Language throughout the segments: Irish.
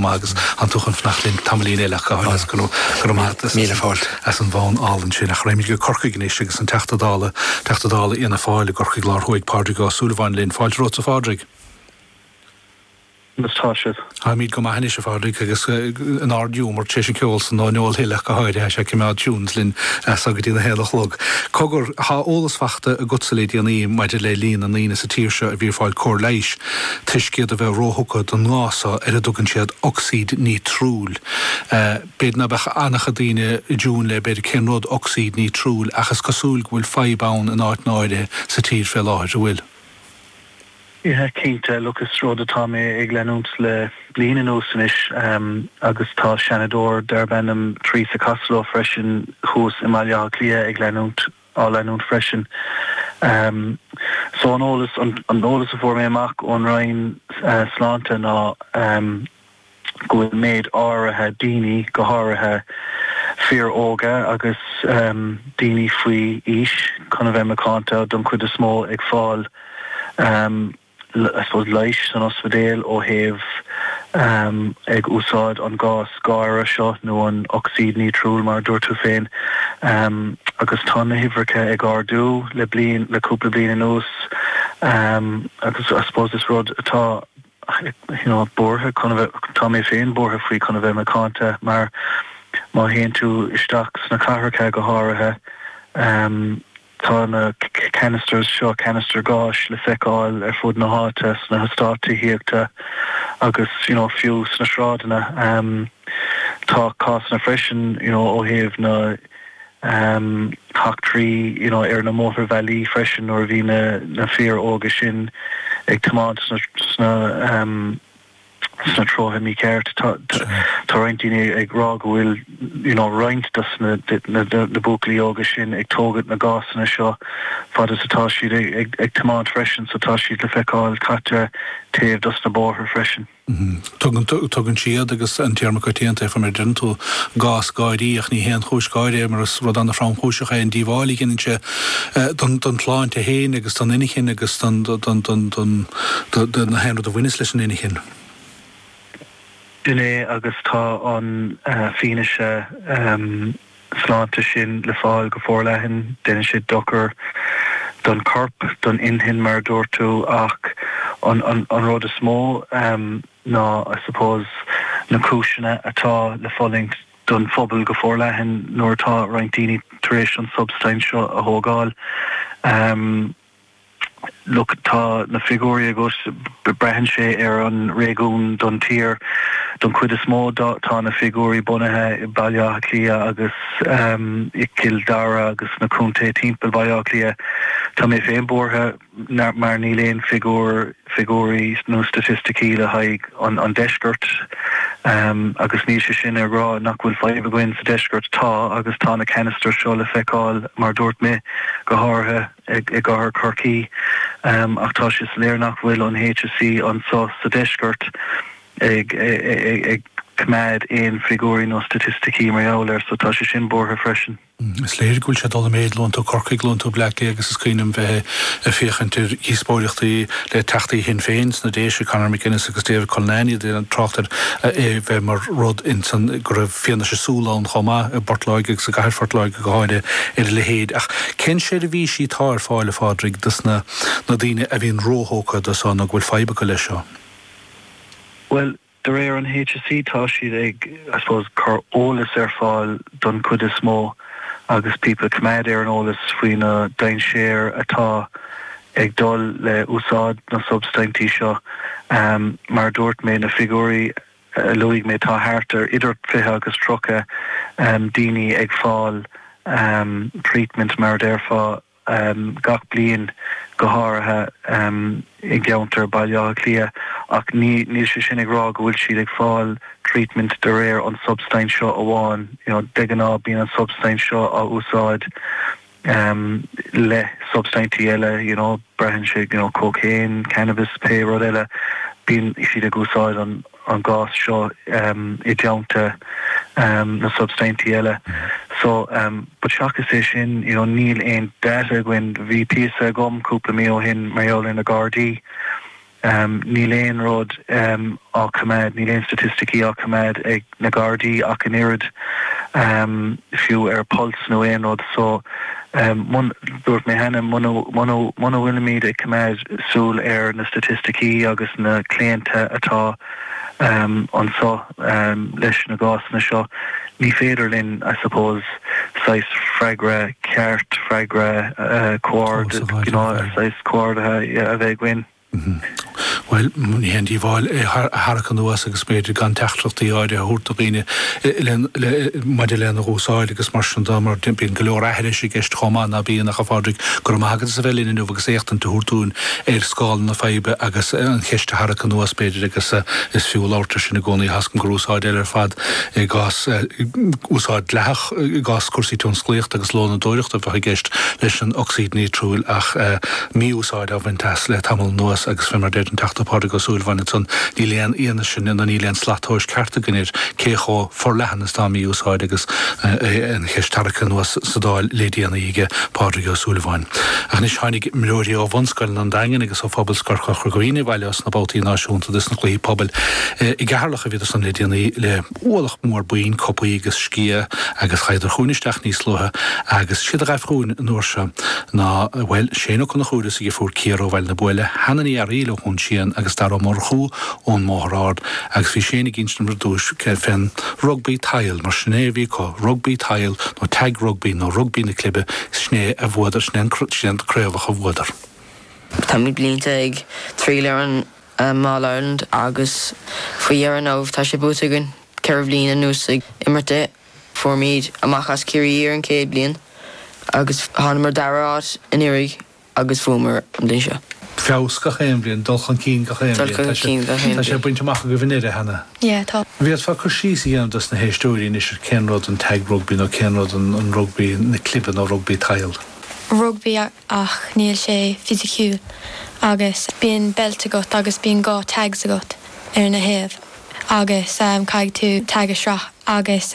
maith agus an t-úchan fanacht linn tamaillín eile acu thoir as. Go raibh maith agat as Míle fáilt. as an bhfonn álainn sin. Ach raghaimid go Corcaigh anois agus an Teachta Dála Teachta Dála Fhianna Fáil i gCorcaigh Lár Thuaidh Pádraig Ó Súilleabháin linn. Fáilte romhat a Phádraig. Conas tá sibh? Táimid go maith anois a Phádraig agus in ardghiúmar tar éis an ceol san ó Noel Hill acu thoir. Tá sé ag coimeád tunes linn as so go dtí na haon a chlog. Cogar, tá eolas fachta agatsa le déanaí maidir le líon na ndaoine sa tír seo a bhí ag fáil cóir leighis. toisc iad a bheith róthugtha don ngás seo ar a dtugann siad ocsaíd nítriúil. B'fhéidir ná beadh an-chuid daoine i dtiúin le, b'fhéidir, cén rud é ocsaíd nítriúil ach is cosúil go bhfuil fadhb ann in áit náirithe sa tír fé láthair, an bhfuil? Tá cinnte, agus is rud atá mé ag leanúint le bliain anuas anois agus tá Seanadóir darb ainm Theresa Costello freisin thuas i mBaile Átha Cliath ag leanúint á leanúint freisin. So an t-eolas, an t-eolas a fuair mé amach ón Roinn Sláinte ná go bhfuil méid áirithe daoine, go háirithe fir óga agus daoine faoi aois, chun a bheith macánta, don chuid is mó ag fáil I suppose leighis san ospidéal ó thaobh ag úsáid an gás gáire seo nó an ocsaíd nítriúil mar a dúirt tú féin agus tá na huimhreacha ag ardú le bliain le cúpla bliain anuas agus I suppose is rud é atá you know buartha chun a bheith tá mé féin buartha faoi chun a bheith macánta mar má théann tú isteach sna cathracha go háirithe Tá na canisters seo, canisters gáis, le feiceáil ar fud na háite, sna heastáit tithíochta agus you know fiú sna sráideanna. Tá cásanna freisin you know ó thaobh na heachtraí you know ar na mótarbhealaí freisin nuair a bhí na fir óga sin ag tiomáint sna sna treonna míchearta. Tá roinnt daoine ag rá go bhfuil you know roinnt dos na na buachaillí óga sin ag tógaint na ngásanna seo fad is atá siad ag ag tiomáint freisin so tá siad le feiceáil caite ar thaobh dos na bóithre freisin. Tugann tugann siad agus an téarma coitianta ag chur mé deireann tú gcás gáirí ach ní haon chúis gáire é mar is rud an-thromchúiseach é an díobháil a dhéanann sé don tsláinte féin agus don inchinn agus d'aon rud a bhaineas leis an inchinn. Déanann agus tá an fianaise sláinte sin le fáil go forleathan. Déanann sé dochar don chorp, don inchinn mar a dúirt tú ach an rud is mó ná I suppose na cúiseanna atá le fulaingt, don phobal go forleathan nuair atá roinnt daoine tar éis an tsubstaint seo a thógáil. Look tá na figiúirí agat, braitheann sé ar an réigiún don tír. Don chuid is mó tá na figiúirí bunaithe i Baile Átha Cliath agus i gCill Dara agus sna contae timpeall Baile Átha Cliath. Tá mé féin buartha. mar níl aon figiúr, figiúirí nó staitisticí le haghaidh an deisceart agus níl sé sin ag rá nach bhfuil fadhb againn sa deisceart, tá agus tá na ceanastair seo le feiceáil mar a dúirt mé, go háirithe i gcathair Corcaí ach tá sé soiléir nach bhfuil an HSE anseo sa deisceart ag coimeád aon figiúirí nó staitisticí mar gheall air so tá sé sin buartha freisin. Is léir go bhfuil sé ag dul i méid, luann tú Corcaigh, luann tú Bleá Cliath agus is cuimhin liom bheith ag féachaint ar dhíospóireachtaí le teachtaí Shinn Féin sna Déise, Conor McGuinness agus David Cullinane, iad ag trácht ar é bheith mar rud in san go raibh fianaise súl ann chomh maith i bPort Láirge agus i gcathair Phort Láirge go háirithe ar a leithéid. Ach cén seirbhísí atá ar fáil, a Phádraig, dos na daoine a bhíonn róthógtha do seo nó go bhfuil fadhb acu leis seo? Bhuel, De réir an HSE tá siad ag, I suppose, cur eolas ar fáil don chuid is mó agus people a choimeád ar an eolas faoi na dainséir atá ag dul le úsáid na substaintí seo. Mar a dúirt mé na figiúirí a luaigh mé tá thart ar idir 20 agus 30 daoine ag fáil treatment mar a déarfá, gach bliain, go háirithe i gceantar Baile Átha Cliath, ach níl sé sin ag rá go bhfuil siad ag fáil treatment de réir an substaint seo amháin. De ghnáth bíonn an substaint seo á úsáid le substaintí eile, you know, braitheann sé, you know, cocaine, cannabis, pé rud eile, bíonn siad ag úsáid an. an gás seo i dteannta na substaintí eile so but seachas é sin you know níl aon data againn bhí píosa agam cúpla mí ó shin mar gheall ar na Gardaí níl aon rud á coimeád níl aon staitisticí á coimeád ag na Gardaí ach an oiread fiú ar Pulse nó aon rud so Dúirt mé cheana, muna bhfuilimid ag coimeád súil ar na staitisticí agus na claonta atá anseo leis na gásanna seo, ní féidir linn, I suppose, saghas freagra ceart, freagra saghas comhordaithe a bheith againn. Bhuel, ní haon díobháil é a tharrac anuas agus b'fhéidir gan teachtaireachtaí áirithe a thabhairt do dhaoine maidir lena úsáid agus mar sin de mar bíonn go leor aithris i gceist chomh maith, ná bíonn, ach a Phádraig, go raibh maith agat as a bheith linn inniu agus éachtaint a thabhairt dúinn ar scála na faidhbe agus an cheist a tharrac anuas b'fhéidir agus is fiú labhairt air sin i gcónaí, toisc gur úsáid eile ar fad i gcás úsáid dleathach. i gcás cúrsaí tionsclaíochta agus lónadóireachta a bheadh i gceist leis an ocsaíd nítriúil ach mí-úsáid á bhaint as le tamall anuas agus fé mar a deir an Teachta Pádraig Ó Súilleabháin ansan níl aon fhianaise nó níl aon slat tomhais ceart againn ar cé chomh forleathan is tá mí-úsáid agus an cheist tarraigthe anuas sa Dáil le déanaí aige Pádraig Ó Súilleabháin. Ach anois tháinig imreoirí ó Bhunscoileanna an Daingin agus ó Phobalscoil Chorca Dhuibhne abhaile ó sna babhtaí náisiúnta de sna Cluichí Pobail i gCeatharlach a bhí ansan le déanaí le ualach mór boinn, cupaí agus sciatha agus ghaibheadar chugainn isteach níos luaithe agus is iad a ghaibh chugainn an uair seo ná, bhuel, Shane Ó Conchúir is a dheirfiúr Ciara ó Bhaile na Buaile, Hannah Ní Fhearghail ó Dhún Síon agus Darragh Ó Murchú ón mBóthar Ard agus bhí Shane ag insint dom ar dtús fén rugbaí tadhaill mar sin é a bhí acu, rugbaí tadhaill nó tag rugbaí nó rugbaí na clibe sin é a bhuadar, sin é an chraobh a bhuadar. Tá mé blianta ag triall ar an. All Ireland agus faoi dheireadh now tá sé buaite againn ceithre bhliain anuas ag imirt é. Fuaireamar amach as Ciarraí ar an céad bliain agus thánamar dara áit anuiridh agus bhuamar an bhliain seo. Feabhas gach aon bhliain, dul chun cinn gach aon bhliain, tá sé tá sé bainte amach agaibh i ndeireadh thiar. An bhféadfá cur síos a dhéanamh dos na héisteoirí anois ar cén rud an Tag Rugby nó cén rud an rugbaí na clibe nó rugbaí tadhaill? Rugbaí. ach níl sé fisiciúil agus bíonn beilt agat agus bíonn dhá tags agat ar na thaobh agus caithfidh tú tag a sracadh agus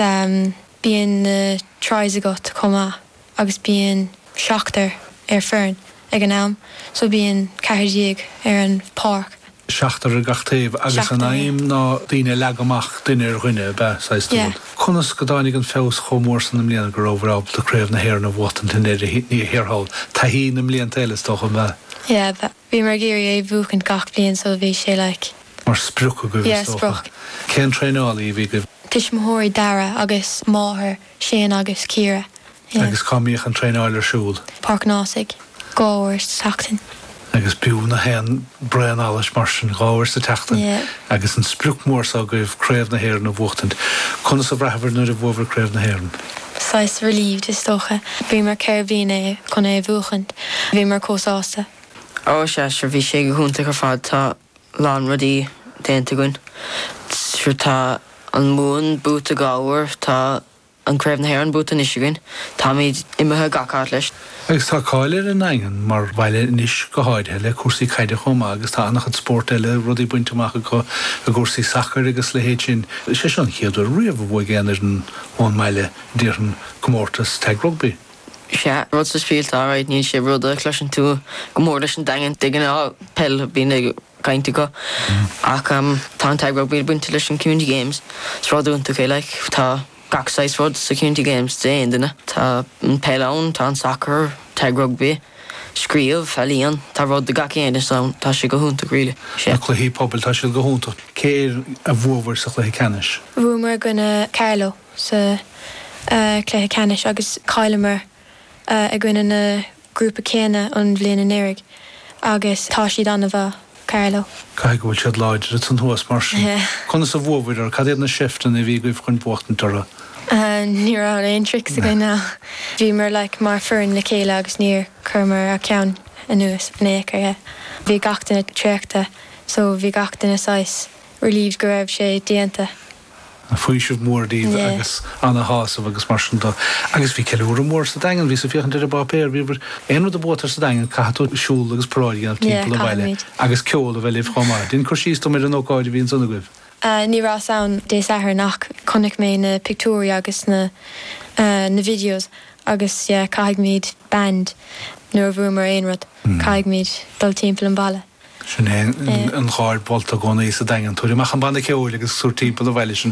bíonn na tries agat chomh maith agus bíonn seachtar ar foireann ag an am so bíonn ceathar déag ar an pháirc. seachtar ar gach taobh agus an aidhm ná daoine a leagadh amach duine ar dhuine ab ea saghas rud? Conas go dtáinig an feabhas chomh mór san i mbliana go rabhabhair ábalta Craobh na hÉireann a bhuachtaint i ndeireadh thiar thall, taithí na mblianta eile is dócha ab ea? Yeah, bhíomar ag iarraidh é bhuachaint gach bliain so bhí sé like. mar sprioc agaibh is dócha. Cén traenálaí a bhí agaibh? Tuismitheoirí Darragh agus máthair Shane agus Ciara. Agus cá mbíodh an traenáil ar siúl? Páirc an Ásaigh, dhá uair sa tseachtain. Agus b'fhiú gach aon braon allais mar sin, dhá uair sa tseachtain agus an sprioc mhór seo agaibh, Craobh na hÉireann a bhuachtaint. Conas a bhraitheabhair nuair a bhuabhair Craobh na hÉireann? Saghas relieved is dócha. Bhíomar ceithre bliana chun é a bhuachaint. Bhíomar chomh sásta. Ó, sea, sure, bhí sé go hiontach ar fad. Tá. lán rudaí déanta againn. Tá an Mumhan buaite dhá uair, tá an Craobh na hÉireann buaite anois againn, táimid imithe gach áit leis. Agus tá cáil ar an nDaingean mar bhaile anois go háirithe le cúrsaí caide chomh maith agus tá an-chuid spórt eile, rudaí bainte amach acu i gcúrsaí sacair agus a leithéid sin. Is é seo an chéad uair riamh a bhuaigh aon fhoireann ón mbaile, déarfainn, comórtas tag rugbaí. Sea, rud speisialta, alright, níl sé rud a chloiseann tú go mór leis an Daingean, de ghnáth peil a bhíonn á chaint acu ach tá an tag rugbaí bainte leis an Community Games, is rud iontach é like, tá gach saghas rud sa Community Games d'aon duine, tá an peil ann, tá an sacar, tag rugbaí, scríobh, ealaíon, tá rud do gach aon duine ann, tá sé go hiontach really, sea. Na cluichí pobail, tá siad go hiontach. Cé air a bhuabhair sa chluiche ceannais? Bhuamar i gcoinne Carlow. sa chluiche ceannais agus chailleamar i gcoinne na grúpa céanna an bhliain anuraidh agus tá siad ana-mhaith, Carlow. Caithfidh go bhfuil siad láidir ansan thuas mar sin. Conas a bhuabhair orthu? Cad iad na seifteanna a bhí agaibh chun buachtaint orthu? Ní raibh aon tricks againn ach bhíomar like mar foireann le chéile agus níor chuireamar a ceann anuas in ao'chor yeah. Bhí gach duine traochta so bhí gach duine saghas relieved go raibh sé déanta. faoiseamh mór díbh agus ana-shásamh agus mar sin de agus bhí ceiliúradh mór sa Daingean, bhíos ag féachaint ar an bpáipéar, bhí bhur, aon rud a buaitear sa Daingean caithfidh tú siúl agus paráid a dhéanamh timpeall an bhaile agus ceol a bheith libh chomh maith. Déan cur síos dom ar an ócáid a bhí ansan agaibh. Ní rabhas ann Dé Sathairn ach chonaic mé na pictiúirí agus na na videos agus yeah caithfidh muid band nuair a bhuamar aon rud caithfidh muid dul timpeall an bhaile. Sin é an gháir mholta i gcónaí sa Daingean. Tabhair amach an banna ceoil agus tabhair timpeall an bhaile sinn.